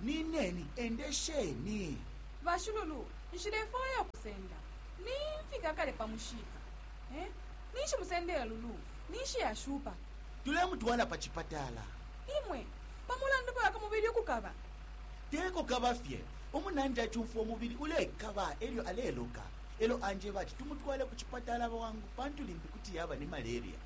Nineni, endesheni. Bashululu, nshilefwaya ukusenda. Nimfika kale pa mushiika. Eh? Ninshi musendela Lulu? Ninshi ashupa? Tulemutwala pa cipatala. Imwe, pa mulandu fye wa ku mubili ukukaba? Te kukaba fye. Umunandi acumfwa umubili ulekaba e lyo aleloka, e lyo anjeba ati tumutwale ku cipatala bwangu pantu limbi kuti yaba ni malaria.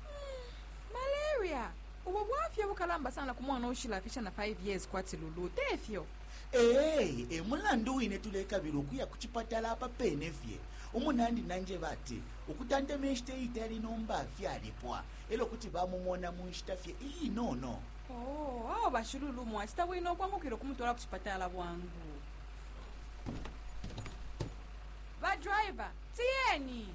Malaria? Ubu bwafya bukalamba sana ku mwana uushilafisha na 5 years kwati Lulu, te fyo? Ee, e mulandu wine tulekabila ukuya ku cipatala apa pene fye. Umunandi nanjeba ati ukutantema inshita iitali nomba fyalipwa e lyo kuti bamumona mu nshita fye iinono. Oo, awe ba Shilulu mwacita bwino ukwangukila ukumutwala ku cipatala bwangu. Ba driver, tiyeni!